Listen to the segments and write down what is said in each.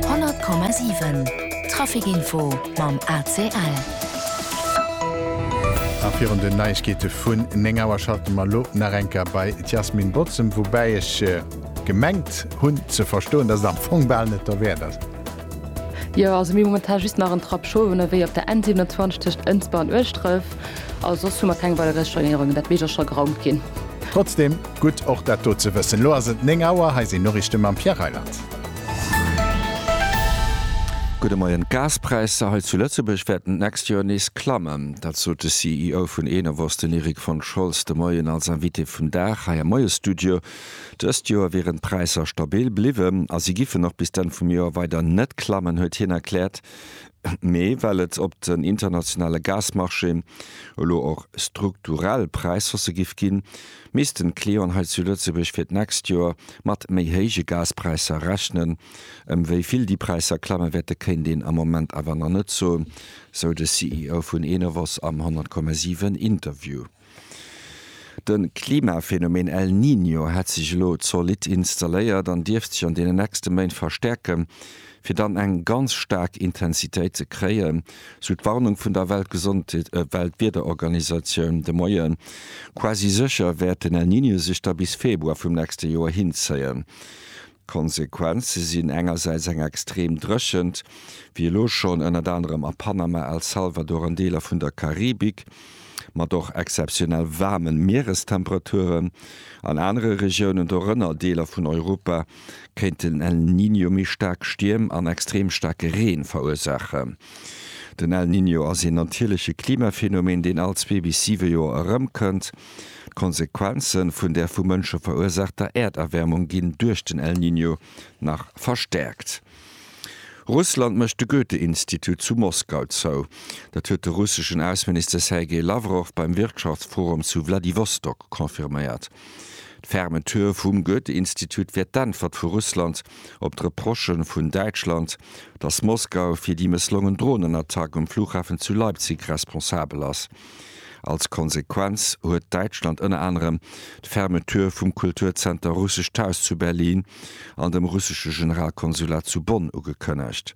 100,7 Trafic info mam ACL. A virun den Neiegkeete vun 9 Auer schalte mer elo nach eng Kéier bei d'Yasmin Bozem, woubäi ech gemengt hunn ze verstoen, datt et am Fong bal net derwäert ass. Jo, also mir hu momentan just nach en Trappschof ënnerwee op der N27 tëscht Ënsber an Ueschdref a soss hu mer keng weider gréisser Storéierungen, dat mécht och scho geraumt ginn. Trotzdem. Gutt och dat do ze wëssen. Elo ass et 9 Auer, hei sinn d'Noriichte mam Pierre Reyland. Gudde Moien, D'Gaspräisser hei zu Lëtzebuerg wäerten d'nächst Joer nees klammen. Dat sot de CEO vun Enovos, den Erik von Scholz, de Moien als Invité vum Dag hei am Moiesstudio. Dëst Joer wieren d'Präisser stabil bliwwen a si giffen och bis d'Enn vum Joer weider net klammen, huet hien erkläert. Mee well et op den internationale Gasmarchéen elo och strukturell Präishausse giff ginn, Missten d'Clienten hei zu Lëtzebuerg fir d'nächst Joer mat méi héije Gaspräisser rechnen? Ëm wéi vill déi Präisser klamme wäerte kéint een am Moment awer nach net soen, sou de CEO vun Enovos am 100,7 Interview. De Klimaphenomen El Niño hätt sech elo zolidd installéiert an dierft sech an deenen nächste Méint verstäerken. fir dann eng ganz staark Intensitéit ze kréien, sou d'Warnung vun der Weltgesondheet-Weltwiederorganisatioun de Moien. Quasi sécher wäert den El Niño sech da bis Februar vum nächste Joer hinzéien. D'Konsequenze sinn engersäits eng extrem Dréchent, wéi elo schonn, ënnert anerem a Panama, El Salvador an Deeler vun der Karibik, mat och exzeptionell waarmen Mierestemperaturen an anere Regiounen, dorënner Deeler vun Europa. kéint den El Niño méi staark Stierm an extreem staarke Reen verursaachen. Den El Niño ass een natierleche Klimaphenomen, deen all zwee bis siwe Joer erëmkënnt. D'Konsequenzen vun der vu Mënsche verursaachter Äerderwärmung ginn duerch den El Niño nach verstäerkt. Russland mécht de Goethe-Institut zu Moskau zou. Dat huet de russeschen Ausseminister Sergei Lawrow beim Wirtschaftsforum zu Wladiwostok confirméiert. D'Fermeture vum Goethe-Institut wär d'Äntwert vu Russland op d'Reprochen vun Däitschland, datt Moskau fir déi mësslongen Dronenattack um Flughafen zu Leipzig responsabel ass. Als Konsequenz huet Däitschland ënner anerem d'Fermeture vum Kulturzenter Russescht Haus zu Berlin an dem russesche Generalkonsulat zu Bonn ugekënnegt.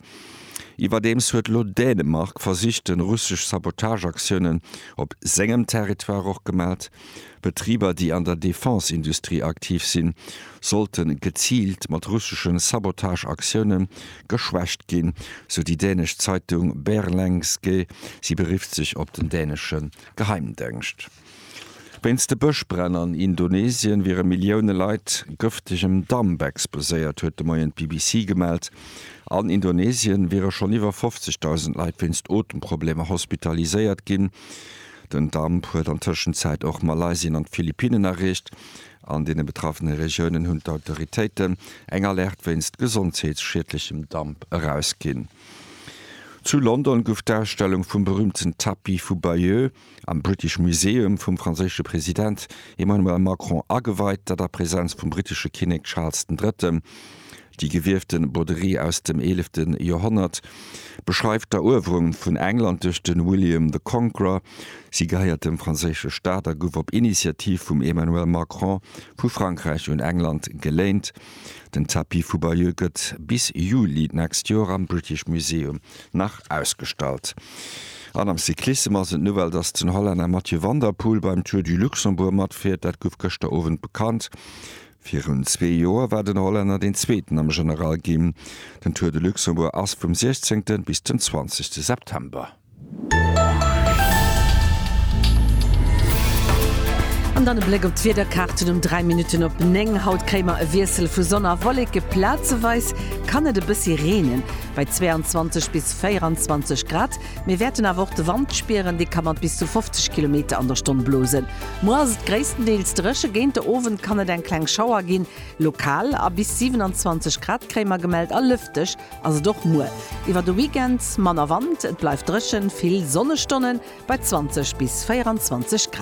Iwwerdeems huet elo Dänemark versicht de russesch Sabotageaktiounen op sengem Territoire och gemat. Betriber, déi an der Defense-Industrie aktiv sinn, sollte geziilt mat russesche Sabotage-Aktioune geschwächt ginn, sou déi dänesch Zeitung Berlengske. Si berifft sech op den dänesche Geheimdengscht. Wéinst de Bëschbränn an Indonesien wiere Millioune Leit gëftegem Damp exposéiert, huet de Moien d'BBC gemellt. An Indonesien wiere schonn iwwer 50.000 Leit wéinst Otemprobleemer hospitaliséiert ginn. Den Damp huet an Tëschenzäit och Malaysien an d'Philippinnen erreecht. An deene betraffene Regiounen hunn d'Autoritéiten eng Alerte wéinst gesondheetsschiedlechem Damp erausginn. Zu London gouf d'Ausstellung vum berüümten Tapis vu Bayeux am British Museum vum franséische President Emmanuel Macron ageweit, dat a Presenz vum brittesche Kinnek Charles den Drëtten. Déi gewiefte Broderie aus dem eelefte Joerhonnert beschreift d'Eruewerung vun England duerch de William the Conqueror. Si gehéiert dem franséische Staat a gouf op Initiativ vum Emmanuel Macron vu Frankräich un England geléint. Den Tapis vu Bayeux gëtt bis Juli d'nächst Joer am British Museum nach ausgestallt. An am Cyclissem ass et d'Nouvelle, dass den Hollänner Mathieu van der Poel beim Tour du Luxembourg matfiert. Dat gouf gëschter Owend bekannt. Virun zwee Joer war den Hollänner deen Zweeten am General ginn. Den Tour de Luxembourg ass vum 16 bis den 20 September. An dann e Bléck op d'Wiederkaarten um 3 Minutten op 9. Haut kréie mer e Wiessel vu Sonn a Wolleke, plazeweis kann et e bëssi reenen. Bei 22 bis 24 Grad Mir wäerten awer och de Wand spieren, dee ka mat bis zu 50 Kilometer an der Stonn blosen. Muer ass et gréisstendeels dréche, géint de Owend kann et eng kleng Schauer ginn, lokal, a bis 27 Grad kréie mer gemellt a lëfteg ass et och muer. Iwwer de Weekend manner Wand, et bleift dréchen, vill Sonnestonnen bei 20 bis 24 Grad.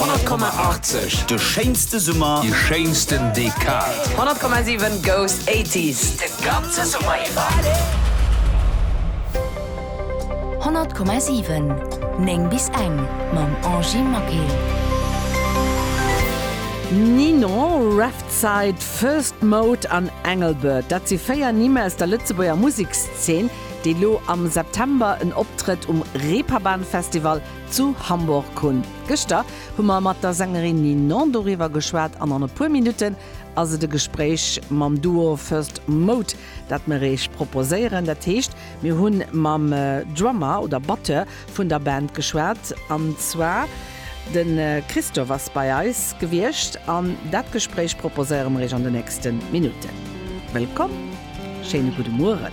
100,80 De schéinste Summer, déi schéinsten Dekad. 100,7 Goes 80s de ganze Summer iwwer. 100,7 9 bis eng mam Angy Maquet. Ninon, Revside, First Mode an Engelbert, dat si véier Nimm aus der Lëtzebuerger Musekszeen, déi lo am September en Optrëtt um Reeperbahn Festival Zu Hamburg hunn. Gëschter hu mer mat der Sängerin Ninon doriwwer geschwat an an e puer Minutten ass et e Gespréich mam Duo First Mode, dat mer Iech proposéieren. Dat heescht, mir hu mam Drummer oder Batteur vun der Band geschwat, an zwar de Christophe ass bei eis gewiescht an dat Gespréich proposéiere mer Iech an de nächste Minutten. Wëllkomm, schéine gudde Mueren.